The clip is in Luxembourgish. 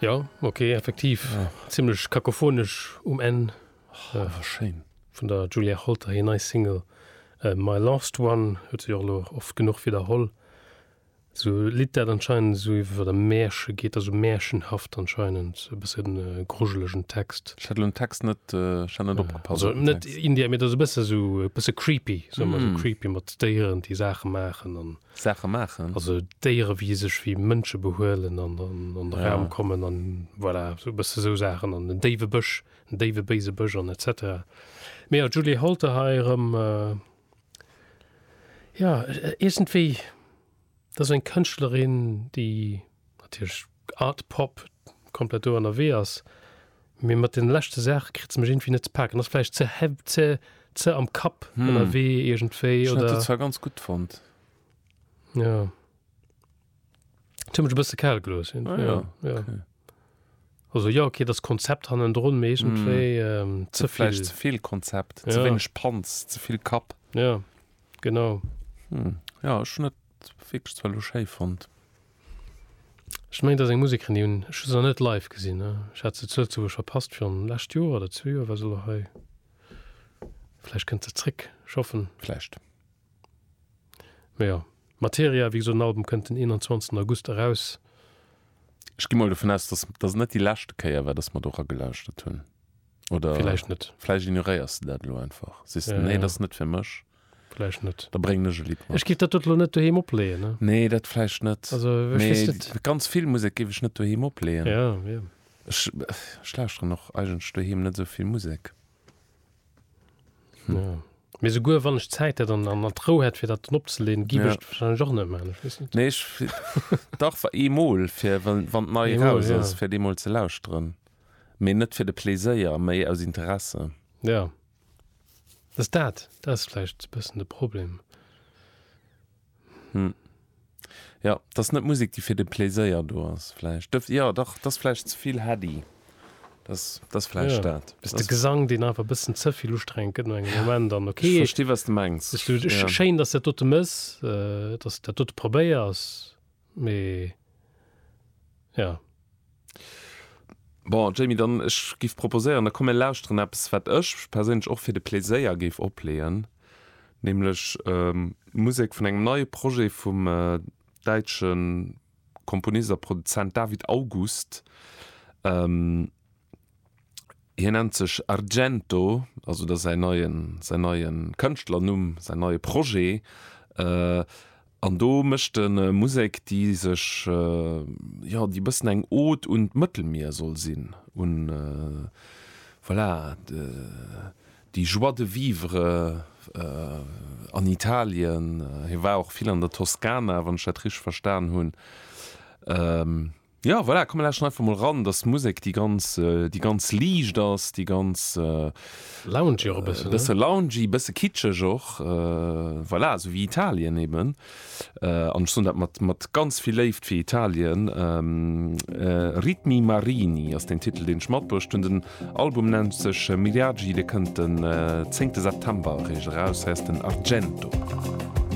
Jo, ok, effektiv zimlech kakophonesch um Enn vun der Julia Holter hir nei Single My Last One huet sech och elo oft genuch widderholl. Sou e Lidd dat anscheinend sou iwwer e Mäerche geet, also mäerchenhaft anscheinend, e bësse grujelegen Text. Ech hat elo den Text net, ech hat net opgepasst. Also net Indie, mee dat ass e bësse sou e bësse creepy, soe mer, sou creepy mat Déieren déi Saache maachen an Saache maachen. Also Déiere wéi sech wéi Mënsche behuelen an an de Raum kommen an voilà esou e bësse esou Saachen an en déiwe Bësch, en déiwe béise Bësch an etc. Mee jo d'Julie Holter hei erëm jo iergendwéi dat ass eng Kënschtlerin déi, natierlech Art Pop komplett do ennerwee ass, mee mat den leschte Saache kritt se mech iergendwéi net ze paken. Ass vläicht ze hea ze ze am Kapp ennerwee iergendwéi, oder? Ech hat dat zwar ganz gutt fonnt. Jo. Et huet mech e bësse kal gelooss iergendwéi, jo, jo. Okay. Also jo, okay, et ass Konzept hannendrun, mee iergendwéi ze vill. Vläicht ze vill Konzept, ze wéineg Panz, ze vill Kapp. Jo, genau. Jo, ech hunn net. Wierklech zwar lo schéi fonnt. Ech mengen et ass eng Musekerin déi hunn ech just nach net live gesinn. Ech hat se zu Lëtzebuerg verpasst virun lescht Joer oder zwee Joer war se lo hei. Vläicht kënnt se zréck, ech hoffen. Vläicht. Mä jo, Materia, wéi gesot den Album kënnt den 21 August eraus. Ech gi mol dovun aus, dass dass et net déi leschte Kéier war, dass mer do ragelauschtert hunn. Oder Vläicht net. vläicht ignoréiers de dat elo einfach. Sees de, Nee, dat ass net fir mech. Vläicht net. Da bréngen ech e Lidd mat. Ech géif dat dot elo net doheem opleeën, ne? Nee, dat vläicht net. Also, ech weess Mee net. ganz vill Musek géif ech net doheem opleeën. Ja, jo. Ech, ech lauschteren och eigentlech doheem net esou vill Musek. Hm. Ja. Mee souguer wann ech d'Zäit hätt an, an d'Rou hätt, fir dat dann opzeleeën, géif ech Nee. et warscheinlech och net maachen. Ech weess net. Nee, ech, dach, wa- eemol, fir wa wann d'Nei Eemol, eraus ja. ass, fir déi mol ze lauschteren. Mee net fir de Pleséier, méi aus Interesse. Ja. Dass dat, dat ass vläicht e bëssen de Problem. Hm. Jo, et ass net Musek, déi fir de Playséier do ass vläicht. Dëf, jo, dach, et ass vläicht ze vill heady. Dat ass, dat ass vläicht Jo, dat. ass de Gesang, deen einfach e bëssen ze vill ustrengend gëtt no engem Moment. An Ech okay, versti, wat s de mengs. ech, du, Ja. schéin, dass du dat dote méchs, dass du dat dote probéiers. Mee ja. Bon, Jamie, dann ech géif proposéieren, da komm mir lauschteren eppes, wat ech perséinlech och fir de Pléséier géif opleeën, nämlech Musek vun engem neie Projet vum däitsche Komponist a Produzent David August. Hien nennt sech Argento, also dat ass säin neien, säin neie Kënschtlernumm, säin neie Projet. An do mécht e Musek, déi sech, jo, déi e bëssen eng Ode un d'Mëttelmier soll sinn, un, voilà, déi Joie de vivre an Italien. Hie war och vill an der Toskana, wann ech dat richteg verstan hunn. Ja, voilà, komm mir lauschteren einfach mol ran, dass d'Musek déi ganz, déi ganz liicht ass, déi ganz, Loungy och e bëssen, ne? Bësse loungy, bësse kitscheg och, voilà, esou wéi Italien eben. An ech soen dat mat, mat ganz vill Léift fir Italien. Ritmi marini ass den Titel, deen ech matbruecht hunn. Den Album nennt sech Miriaggi, dee kënnt den zéngte September eréischt eraus, heißt den Argento.